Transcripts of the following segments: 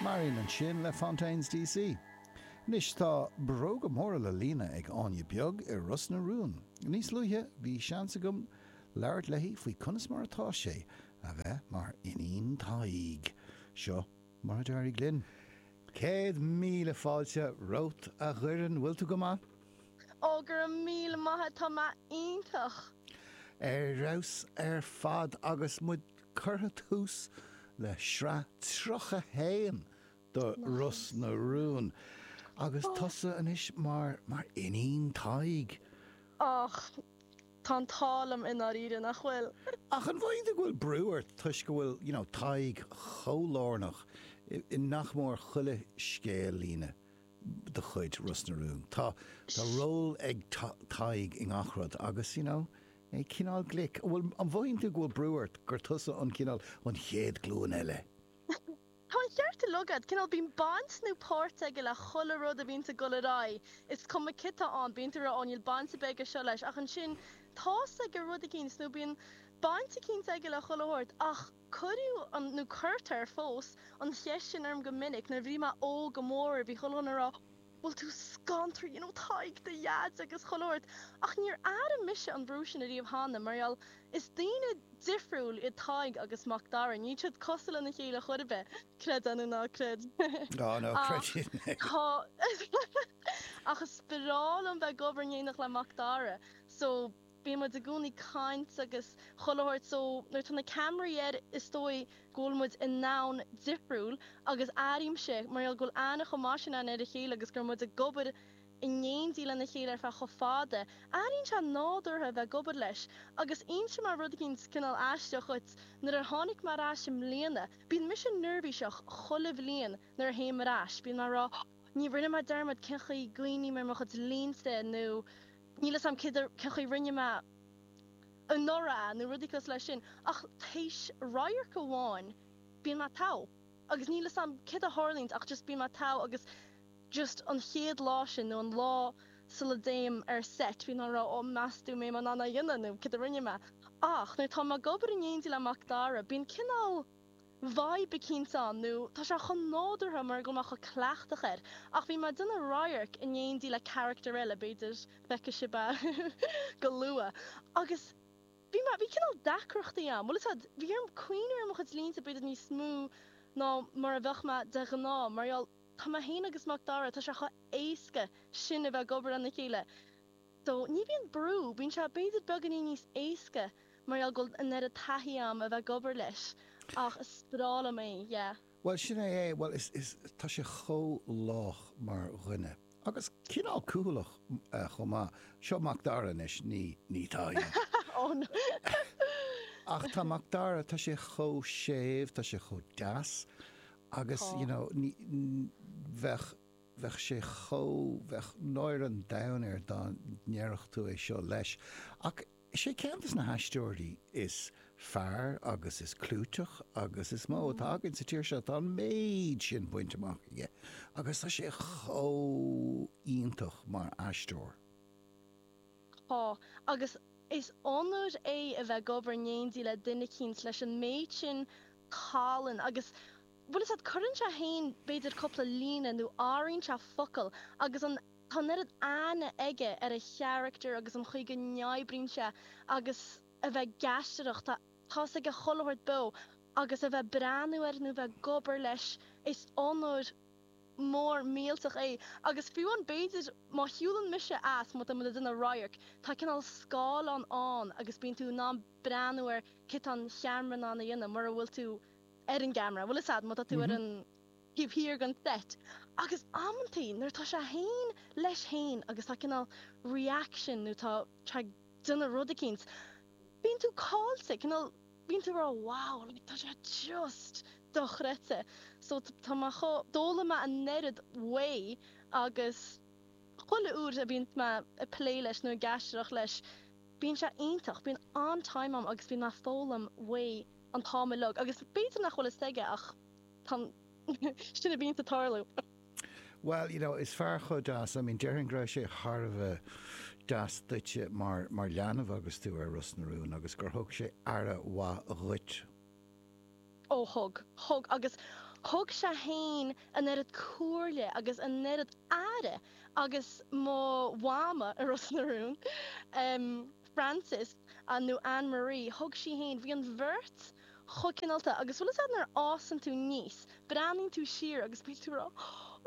Mar aon ansin le Fontaines DC. Anois tá bróga móra le líonadh ag Áine Bheag i Ros na Rún. Níos luaithe bhí seans agam labhairt léi faoi conas mar atá sé a bheith mar iníon Taidhg. Seo mar a d'éirigh linn. Céad míle fáilte romhat a Dhoireann, bhfuil tú go maith? Oh, go raibh míle maith agat, tá mé iontach! Ar fheabhas ar fad agus muid curtha tús le sraith 31 do Ros na Rún agus tusa anois mar mar iníon Taidhg. Och, tá an t-ádh liom i ndáiríre, nach bhfuil? Ach an bhfaigheann tú go bhfuil brú ort toisc go bhfuil, you know, Tadhg chomh lárnach i nach mór chuile scéal-líne de chuid Ros na Rún. Tá tá ról ag Tadhg i ngach rud agus you know é cineál glic. Bhuel an mothaíonn tú go bhfuil brú ort gur tusa an cineál an chéad glúin eile? Tá an ceart uilig agat. Cineál bíonn baint nó páirt aige le chuile rud a bhíonns ag dul ar aghaidh. Is cuma cé tá ann, bíonn tú ag rá 'Ó níl baint ar bith aige seo leis' ach ansin tá's aige rud eicínt nó bíonn baint eicínt aige le chuile shórt ach Cuireadh, nó cuirtear fós, an cheist sin orm go minic. Nuair a bhí mé óg, go mórmhór, bhí chuile dhuine ag rá, Bhfuil tú scantraithe, you know, Tadhg do Dhaid agus chuile shórt. Ach níor airigh mise an brú sin ariamh cheana, mar gheall, is daoine difriúil iad Tadhg agus Mac Dara. Níl siad cosúil lena chéile chor ar bith, creid é nó ná creid. Oh, no, creidim. Ach is breá liom bheith ag obair in éindí le Mac Dara, so bíonn muid i gcónaí caint agus chuile shórt so nuair atá na ceamaraí air is dóigh go bhfuil muid i ndomhan difriúil agus airímse mar gheall go bhfuil aithne chomh maith sin againn ar a chéile agus go raibh muid ag obair in éindí lena chéile ar feadh chomh fada, airíonn sé nádúrtha a bheith ag obair leis agus is é an rud eicínt cineál aisteach, right, nuair a tháinig mé ar ais i mbliana, bíonn mise neirbhíseach chuile bhliain nuair a théim ar ais, bíonn mé a' rá oh no rinne mé dearmad cén chaoi a ndéanann mé mo chuid línte nó Níl fhios a'm cé chaoi rinne mé anuraidh nó rudaí cosúil leis sin, ach théis radharc amháin bíonn mé togha, agus níl fhios a'm céard a tharlaíonns ach just bíonn mé togha agus just an chéad lá sin nó an lá sula dtéim ar seit bíonn mé ag rá 'ó meas tú an mbeidh mé in ann é a dhéanamh nó céard a rinne mé'. Ach nuair atá mé ag obair in éindí le Macdara bíonn cineál. Vibe eicínt ann nó tá sé chomh nádúrtha mar gheall tá mé chomh cleachtach air. Ach bhí mé ag déanamh radhairc in éindí le carachtar eile, b'fhéidir feicfidh sibh go luath, agus bhí mé, bhí cineál deacrachtaí a'm, bhuel, shílfeá, bhí orm cuimhniú ar mo chuid línte b'fhéidir níos mó ná mar a bheadh mé de ghnáth mar gheall, tá mé féin agus Macdara, tá sé chomh éasca sin a bheith ag obair lena chéile. So, ní bhíonn brú, bíonn sé b'fhéidir beagáinín níos éasca mar gheall go bhfuil an oiread taithí agam a bheith ag obair leis, ach is breá liom é, yeah. Bhuel, sin é é, bhuel, is, is, tá sé chomh lách mar dhuine, agus cineál cúthaileach chomh maith, seo Macdara anois, ní, ní, tá a fhios agam. Ach tá Macdara, tá sé chomh séimh, tá sé chomh deas, agus, you know, ní, bheadh, bheadh sé chomh, bheadh náire an domhain air dá ndéarfadh tú é seo leis. Ach is é ceann de na haisteoirí is fearr agus is clúiteach agus is mó atá againn sa tír seo, tá an méid sin bainte amach aige agus tá sé chomh iontach mar aisteoir. Tá, agus is onóir é a bheith ag obair in éindí le duine eicínt leis an méid sin tallann agus bhfuil 'fhios a'd, cuireann sé féin b'fhéidir cúpla líne nó athraíonn sé focal agus an, tá an oiread aithne aige ar a charachtar agus an chaoi go n-oibríonn sé agus a bheith ag aisteoireacht, tá tá's aige chuile shórt beo agus a bheith breathnú air nó bheith ag obair leis, is onóir mór millteach é agus fiú amháin b'fhéidir má shiúlann mise as, má tá muid ag déanamh radharc, tá cineál scáileán ann agus bíonn tú in ann breathnú ar céard atá an ceamara in ann a dhéanamh mura bhfuil tú ar an gceamara, bhfuil 'fhios a'd má tá tú ar an taobh thiar den seit, agus amantaí nuair atá sé fhéin leis fhéin agus tá cineál reaction nó tá sé ag déanamh rud eicínt, bíonn tú caillte, cineál bíonn tú ag rá wow like tá sé just dochreidte. So tá mé chomh, d'fhoghlaim mé an oiread uaidh agus chuile uair a bhíonns mé ag plé leis nó ag aisteoireacht leis bíonn sé iontach, bíonn an-time a'm agus bíonn mé ag foghlaim uaidh. an t-am uilig agus b'fhéidir nach bhfuil fhios aige ach sin a bhíonns ag tarlú. Bhuel, you know, is fear chomh deas, I mean, déarfainn go raibh sé thar a bheith deas duitse mar, mar leanbh agus tú ar Ros na Rún agus gur thug sé aire mhaith dhuit. Ó thug, thug agus thug sé fhéin an oiread comhairle agus an oiread aire agus mo Mhama i Ros na Rún. Frances nó Anne Marie, thug sí fhéin, bhí an bheirt chomh cineálta agus bhfuil 'fhios a'd nuair a fhásann tú aníos, breathnaíonn tú siar agus bíonn tú ag rá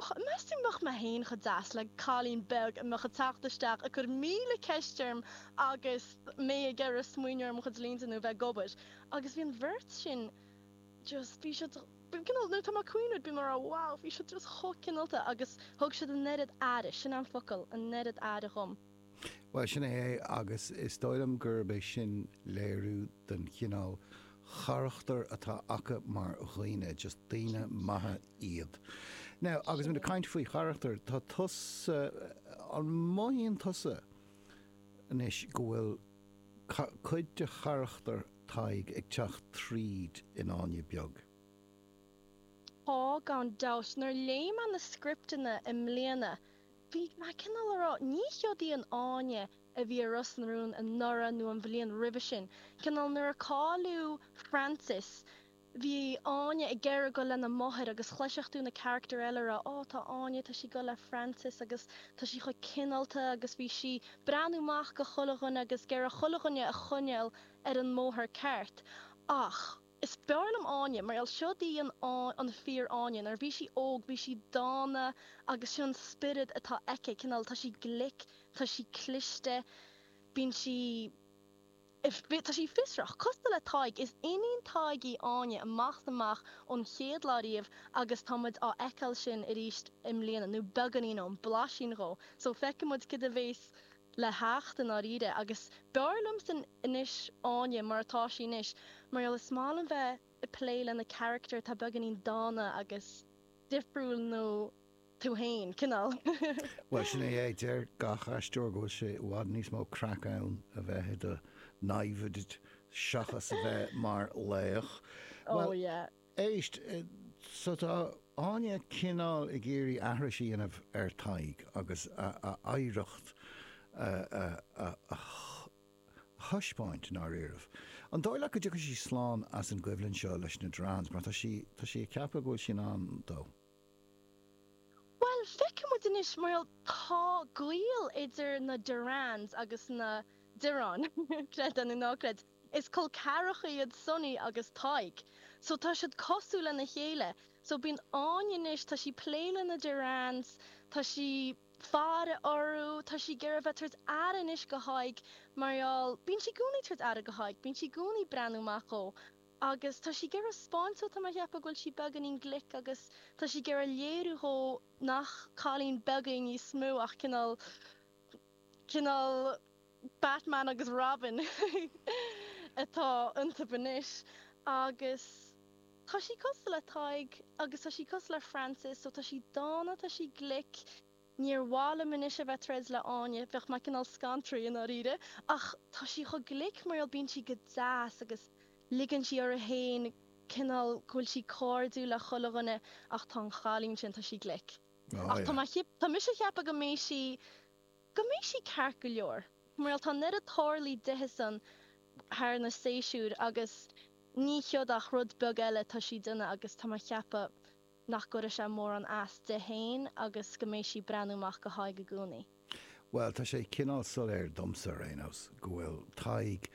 och, meas tú mbeadh mé fhéin chomh deas le cailín beag a bheadh ag teacht isteach ag cur míle ceist orm agus mé ag iarraidh smaoineamh ar mo chuid línte nó bheith ag obair agus bhí an bheirt sin just, bhí siad, you know nuair atá mé ag cuimhniú bím ag rá wow bhí siad just chomh cineálta agus thug siad an oiread aire, sin an focal, an oiread aire dhom. Bhuel, sin é agus is dóigh liom gurb é sin léiriú den chineál charachtair atá acu mar dhaoine, just daoine maithe iad. Now, agus muid ag caint faoi charachtair, tá tusa, an mothaíonn tusa anois go bhfuil cuid de charachtar Tadhg ag teacht tríd in Áine Beag? Tá, gan dabht. Nuair léigh mé na scripteanna i mbliana, Bhí mé cineál ag rá, ní seod í an Áine a bhí ar Ros na Rún anuraidh nó an bhliain roimhe sin, cineál nuair a cailleadh Frances bhí Áine ag iarraidh goil lena máthair agus chloisfeadh tú na carachtair eile ag rá oh tá Áine, tá sí goil le Frances agus tá sí chomh cineálta agus bhí sí breathnú amach go chuile dhuine agus ag iarraidh chuile dhuine a choinneáil ar an mbóthar ceart ach. Is fearr liom Áine mar gheall siod í an fíor Áine nuair a bhí sí óg bhí sí dána agus sin an spiorad atá aici cineál tá sí glic tá sí cliste bíonn sí bhí tá sí fiosrach cosúil le Tadhg is iníon Tadhg í Áine amach is amach ón chéad lá riamh agus tá muid á fheiceáil sin arís i mbliana nó beagáinín ó, blaisín dhó so feicfidh muid cad a bheas le theacht i ndáiríre agus b'fhearr liomsa anois Áine mar atá sí anois mar gheall is maith liom bheith ag plé lena carachtar atá beagáinín dána agus difriúil nó tú fhéin, cineál. Bhuel, sin é é. Deir gach aisteoir go bhfuil sé i bhfad níos mó craic ann a bheith i do namhaid seachas a bheith mar laoch. Bhuel, Éist, so tá Áine cineál ag iarraidh aithris a dhéanamh ar Tadhg agus a oidhreacht a thaispeáint, ndáiríribh. An dóigh leat go dtiocfaidh sí slán as an gcoimhlint seo leis na Derranes mar tá sí, tá sí ag ceapadh go bhfuil sí in ann dó? Bhuel, feicfidh muid anois mar tá gaol idir na Derranes agus na Direáin, creid é nó ná creid. Is col ceathracha iad Sonny agus Tadhg so tá siad cosúil lena chéile so bíonn Áine anois tá sí plé le na Derranes tá sí faire orthu tá sí ag iarraidh bheith tabhairt aire anois go Thadhg mar gheall bíonn sí gcónaí tabhairt aire go Thadhg bíonn sí gcónaí breathnú amach dhó agus tá sí ag iarraidh 'spáint dó tá mé a cheapadh go bhfuil sí beagáinín glic agus tá sí ag iarraidh léiriú dhó nach cailín beag í níos mó ach cineál cineál Batman agus Robin atá iontub anois agus tá sí cosúil le Tadhg agus tá sí cosúil le Frances so tá sí dána, tá sí glic, níor mhaith liom anois a bheith troid le Áine, bheadh mé cineál scantraithe i ndáiríre ach tá sí chomh glic mar gheall bíonn sí go deas agus ligeann sí uirthi fhéin cineál go bhfuil sí cairdiúil le chuile dhuine ach tá an chailín sin, tá sí glic. Ach tá mise a cheapadh go mbeidh sí, go mbeidh sí ceart go leor. Bhuel tá an oiread tarlaithe di-san thar na séisiúir agus níl ach céard ach rud beag eile tá sí déanamh agus tá mé a cheapadh nach gcuirfidh sé mórán as di faoin agus go mbeidh sí breathnú amach go hÁine i gcónaí. Bhuel tá sé cineál soiléir domsa ar aon nós go bhfuil Tadhg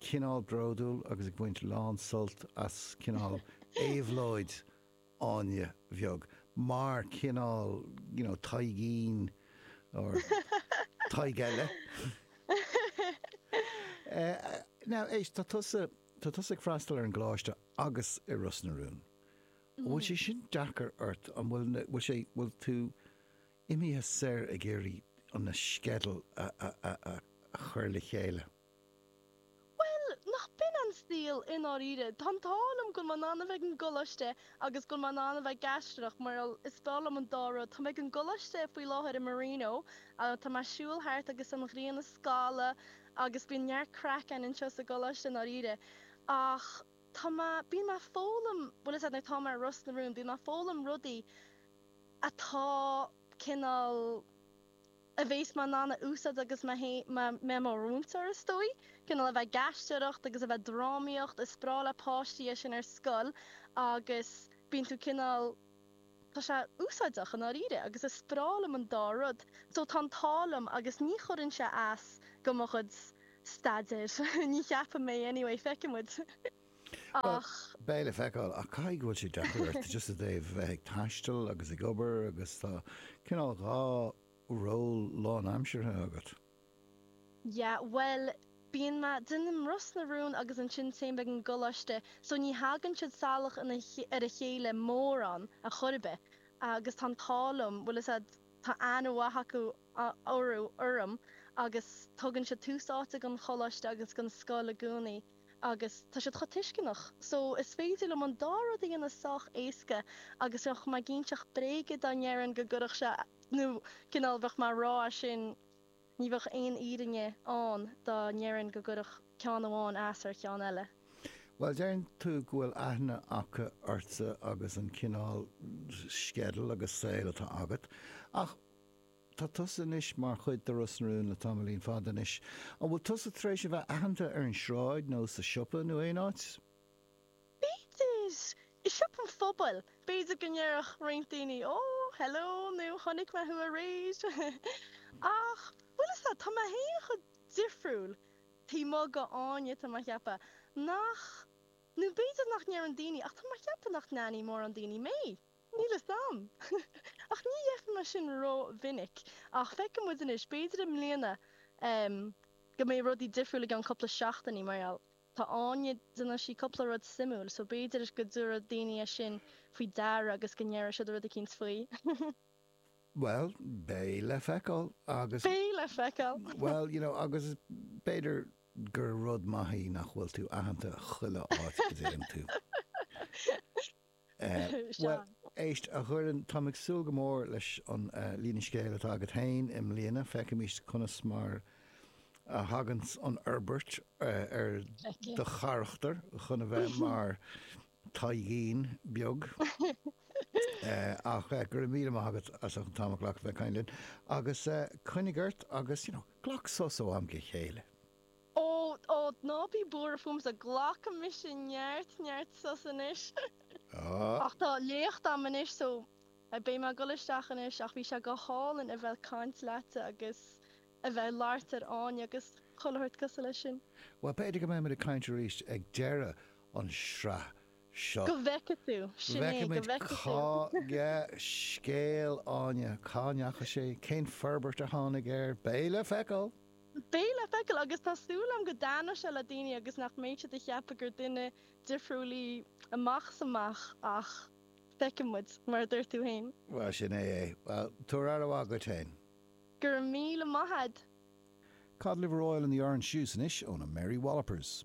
cineál bródúil agus ag baint lán sult as cineál éabhlóid Áine bheag, mar cineál you know Taidhgín or Tadhg eile. Now, Éabha, tá tusa, tá tusa ag freastal ar an gColáiste agus i Ros na Rún. An bhfuil sé sin deacair ort? An bhfuil na, bhfuil sé, bhfuil tú imithe siar ag iarraidh an na sceideal a, a, a, a chur le chéile? Bhuel, níl a fhios agam i ndáiríre. Tá an t-ádh liom go bhfuil mé in ann a bheith ag an gcoláiste agus go bhfuil mé in ann a bheith ag aisteoireacht mar gheall, is breá liom an dá rud. Tá mé ag an gcoláiste faoi láthair i Marino tá mé ag siúl thart agus an ghrian ag scalladh agus bíonn neart craic ann anseo sa gcoláiste i ndáiríre. Ach tá mé, bíonn mé foghlaim, bhfuil a fhios agat nuair tá mé i Ros na Rún bíonn mé foghlaim rudaí atá cineál a bhéas mé in ann a úsáid agus mé i mo mhúinteoir is dóigh. Cineál a bheith ag aisteoireacht agus a bheith ag drámaíocht, is breá le páistí é sin ar scoil agus bíonn tú cineál, tá sé úsáideach i ndáiríre agus is breá liom an dá rud so tá an t-ádh liom agus ní chuireann sé as do mo chuid staidéir, ní cheapaim mé anyway, feicfimid. Ach beidh le feiceáil, ach caithfidh go bhfuil sé deacair ort just i dtaobh a bheith ag taisteal agus ag obair agus tá cineál dhá ról lánaimseartha agat. Yeah, bhuel, bíonn mé, déanaim Ros na Rún agus ansin téim ag an gcoláiste so ní thagann siad salach ina, ar a chéile mórán ar chor ar bith agus tá an t-ádh liom, bhfuil a fhios agat, tá aithne mhaith acu orthu, orm agus tugann siad tús áite don choláiste agus don scoil i gcónaí. agus tá siad chomh tuisceanach so is féidir liom an dá rud a dhéanamh sách éasca agus bheadh mé ag inseacht bréige dá ndéarfainn go gcuirfeadh sé nó cineál bheadh mé a rá é sin ní bheadh aon fhírinne ann dá ndéarfainn go gcuirfeadh ceann amháin as ar cheann eile. Bhuel deireann tú go bhfuil aithne acu ortsa agus an cineál sceideal agus saol atá agat ach, Tá tusa anois mar chuid de Ros na Rún le tamaillín fada anois. An bhfuil tusa tar éis a bheith aitheanta ar an sráid nó sa siopa nó aon áit? B'fhéidir i siopa an phobail, b'fhéidir go ndéarfadh roinnt daoine Ó, hello nó Chonaic mé thú aréir. Ach, bhfuil a fhios agat, tá mé féin chomh difriúil taobh amuigh de Áine, tá mé a cheapadh, nach, nó b'fhéidir nach ndéarfadh daoine ach tá mé a cheapadh nach n-aithneodh mórán daoine mé. Níl fhios a'm, ach ní fheicim mar sin rómhinic, ach feicfidh muid anois, b'fhéidir i mbliana go mbeidh rudaí difriúil i gceann cúpla seachtainí mar gheall, tá Áine, déanann sí cúpla rud suimiúil, so b'fhéidir go dtabharfaidh daoine é sin faoi deara agus go ndéarfaidh siad rud eicínt faoi. Bhuel, beidh le feiceáil agus. Beidh le feiceáil! Bhuel, you know, agus b'fhéidir gur rud maith í nach bhfuil tú aitheanta chuile áit go dtéann tú. Bhuel, éist, a Dhoireann, táim ag súil go mór leis an líne scéil atá agat féin i mbliana. Féachfaimis conas mar a thagann an fhorbairt ar do charachtar chun a bheith mar Taidhgín beag. Ach go raibh míle maith agat as an t-am a ghlacadh a bheith ag caint linn. Agus coinnigh ort agus, you know, glac sos ó am go chéile. Ó, ó, ná bí buartha fúmsa, glacfaidh mise neart, neart sos anois. Ach tá léacht agam anois so beidh mé ag dul isteach anois ach bhí sé go hálainn a bheith ag caint leatsa agus a bheith ag labhairt faoi Áine agus chuile shórt cosúil leis sin. Bhuel, b'fhéidir go mbeidh muid ag caint arís ag deireadh an sraith seo. Go bhfeice tú, sin é, go bhfeice tú. Feicfimid cá scéal Áine, cá ndeachaigh sé, cén forbairt a tháinig air, beidh le feiceáil! Beidh le feiceáil agus tá súil agam go dtaitneoidh sé le daoine agus nach mbeidh siad a cheapadh gur duine difriúil í amach is amach ach feicfidh muid, mar a dúirt tú féin. Bhuel, sin é é. Bhuel, tabhair aire mhaith dhuit féin. Go raibh míle maith a'd. Cod Liver Oil and the Orange Juice anois ó na Mary Wallopers.